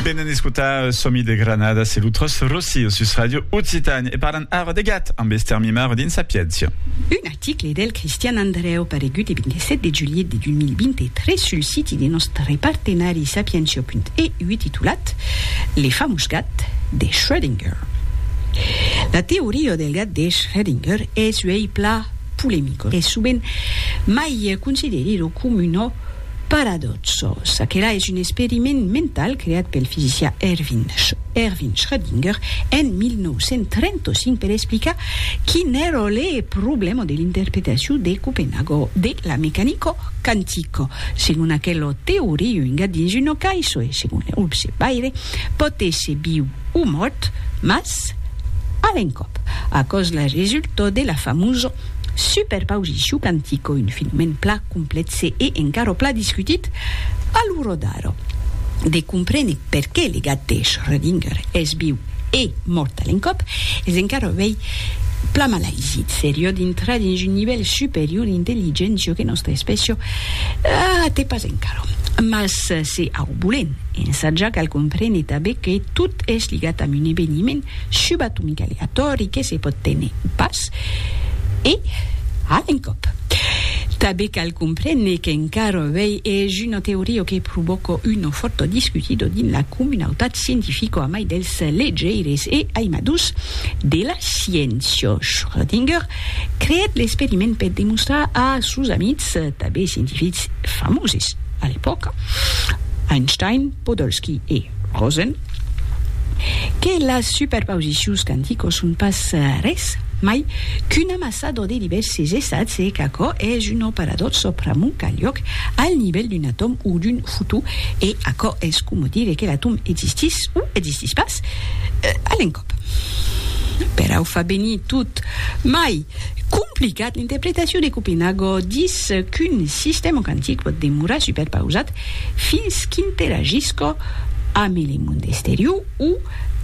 Venen escotar Somi de Granada, se l'utros Rossi, sus Radio Occitan, e parlan ara de gat amb Esther Mimar dins Sapientia. Un article del Cristian Andreu paregut e 27 de julhet de 2023 sul siti de nòstre partenari sapientia.eu titulat Le famós gat de Schrödinger. La teoria del gat de Schrödinger es uèi plan polemicos e sovent mai considerida coma una Paradòxo, çaquelà es un experiment mental creat pel fisicià Erwin Schrödinger en 1935 per explicar quin èra le problèma de l'interpretacion de Copenhago de la mecanica quantica. Segon aquela teoria, un gat dins una caissa, e segon l'observaire, pòt èsser viu o mòrt, mas a l'encòp, aquò's la resulta de la famosa Super pausicu cantico, un filmèn pla complètze e encara pla discutit a lo rodar. De comprene perqué le gat de Schrödinger es viu e mort a l'encòp es encara uèi pla malaisi. Serió dintrar dins un nivèl superior d'intelligéncia que nòstra espècia a te pas encara. Mas se au bolèn ensatjar cal comprene tanben que tot es ligat amb un eveniment, Subatonc aleatòri que se pòt téner pas e a l'encòp. Tanben cal comprene qu'encara avei es una teoria que provòca una fòrta discutida dins la comunautat scientifica amai dels legeires e aimadors de la sciéncia. Schrödinger creèt l'experiment per demostrar a sos amics, tanben scientifics famoses a l'epòca, Einstein, Podolsky e Rosen, que las superpausicions quanticos son pas res mai qu'un amassador de divèrses estats e qu'aquò es un operador sòpramont qu'a luòc al nivèl d'un atòm o d'un fotó e aquò es coma dire que l'atòm existís o existís pas a l'encòp. Perau fa venir tot mai complicat l'interpretacion de Copenhago dins qu'un sistèma quantic pòt demorar superpausat fins qu'interagisca ame le monde esterior o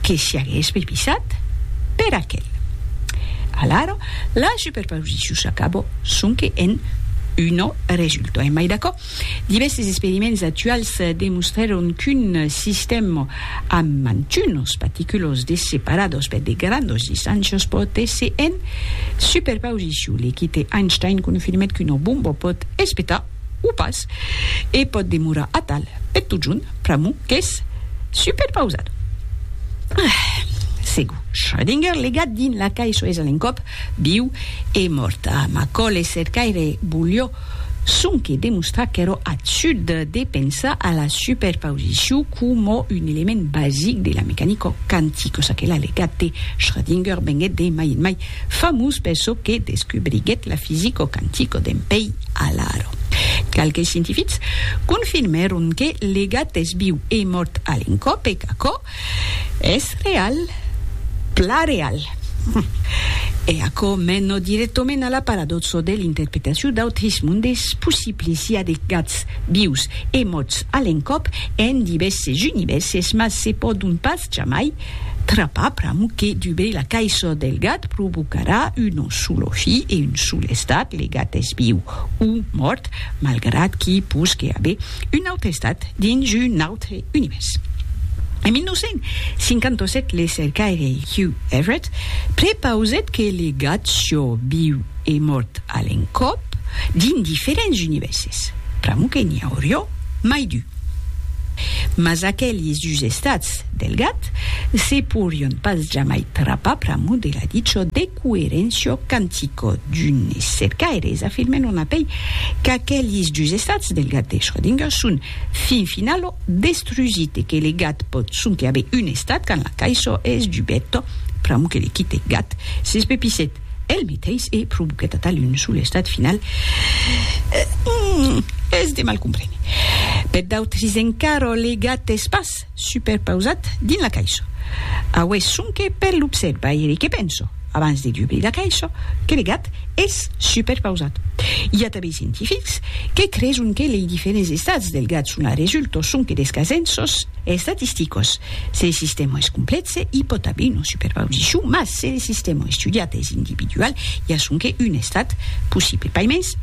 que siagues bepisat per aquel. Alara, la superpausicion s'acaba sonque en una resulta. Emai d'aquò, divèrses experiments actuals demostrèron qu'un sistèm amb mantunas paticulas de separadas per de grandas distàncias pòt èsser en superpausicion. L'equite Einstein confirmèt qu'una bomba pòt espetar o pas, e pòt demorar atal per totjorn, pr'amor qu'es superpausat. Ah! Segur, Schrödinger, legat dins la cai soes a l'encòp, viu e mòrt. Ah, Macaulay cercaire volió sonque demostrar qu'èra absurd de pensar a la superpausicion coma un element basic de la mecanica quantica, çaquelà legat de Schrödinger venguèt de mai en mai Famós per çò que descubriguèt la fisico quantico dempèi alaro. Qualques scientifics confirmèron que le gat es viu e mòrt a l'encòp e qu'aquò es real, plan real. E aquò mena dirèctament a la paradòxa de l'interpretacion d'autres mondes possibles, i a de gats vius e mòrts a l'encòp en divèrses univèrses, mas se pòdon pas jamai Trapar pr'amor que dubei la caisson del gat provocarà un solo fi e un sol estat, le gat es viu o mòrt, malgrat qu'i posque aver un aute estat dins un autre univèrs. En 1957 le cercaire Hugh Everett prepausèt que le gat sió viu e mòrt a l'encòp dins diferents univèrses, pr'amor que n'i aurió mai d'un. Mas aqueli sugestats del gat se porion pas jamai trapar pr'amor de la dicho de coerencio cantico d'unes cercaires afirmen on apei qu'aqueli sugestats del gat de Schrödinger son fin finalo destrusit e que le gat pòt sonque aver un estat quand la caisho es dubèt pr'amor que le quite gat s'espepissèt el meteis e provoquèt atal un solestat final qu'es de mal comprene peth d'autris encara le gat es pas superpausat dins la caisha aués sonque per l'observaire que penso abans de dubrir la caisha que le gat es superpausat i a tanben scientifics que creson que lei diferents estats del gat son arresulto sonque des casenços estatisticos se le sistèma es complèxe i pòt aver una superpausicion mas Se le sistèma estudiat es individual, i a sonque un estat possible, pas mens.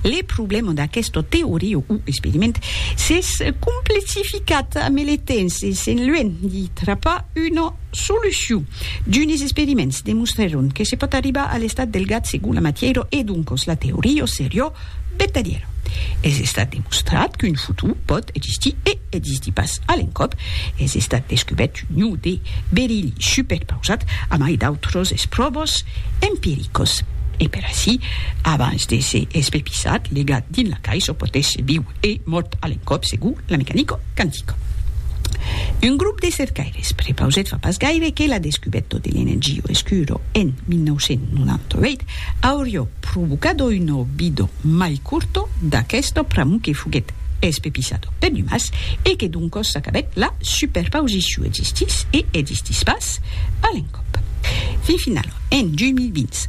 Le problèma d'aquesta teoria o experiment s'es complexificat a mele temps e s'en luènh de trapar una solucion. D'unes experiments demostrèron que se pòt arribar a l'estat del gat segon la matièra e doncas la teoria seriá vertadièra. Es estat demostrat qu'un futur pòt existir e. Existí pas a l'encòp, es estat descubèrt un iu de berilh superpausat amai d'autros espròvos empiricos. E per aicí, abans de se espepissat, legat dins la cais o potètz viu e mòrt a l'encòp segur la mecanico quantica. Un grop de cercaires prepausèt fa pas gaire que la descubèto de l'energio escuro en 1998 aurió provocado un obido mai curto d'aquesta pr'amor que foguèt espepissado per Dumas e que doncos s'acabèt la superpausiciu existís e existís pas a l'encòp. Fin finala, en 2020,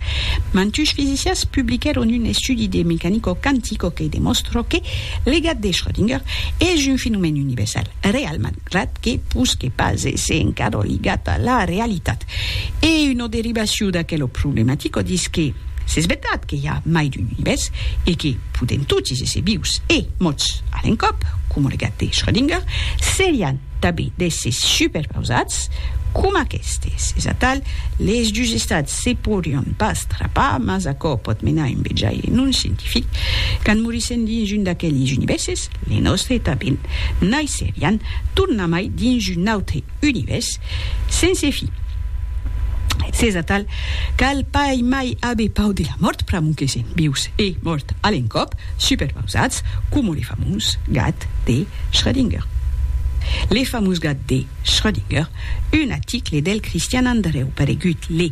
mantush fisicians publiquèron un estudi de mecanico quantico que demòstra que legat de Schrödinger es un fenomèn universal, realman. Ret que posque pas èsser encara ligat a la realitat. E una derivacion d'aquela problematica dins que s'es vertat que i a mai d'un univèrs e que podèm totis èsser vius e mòrts a l'encòp, coma lo gat de Schrödinger, serián tanben d'èssers superpausats coma aquestes. Es atal, les dus estats se podrián pas trapar, mas aquò pòt menar un vejaire non scientific. Quand morissèm dins un d'aqueles univèrses, Ne nòstre tapin naisserián tornamai dins un autre univèrs sense fin. S'es atal, cal pas mai aver pau de la mòrt pr'amor que sèm vius e mòrt a l'encòp, superpausats coma le famós gat de Schrödinger. Le famós gat de Schrödinger, un aticle del Cristian Andrèu paregut le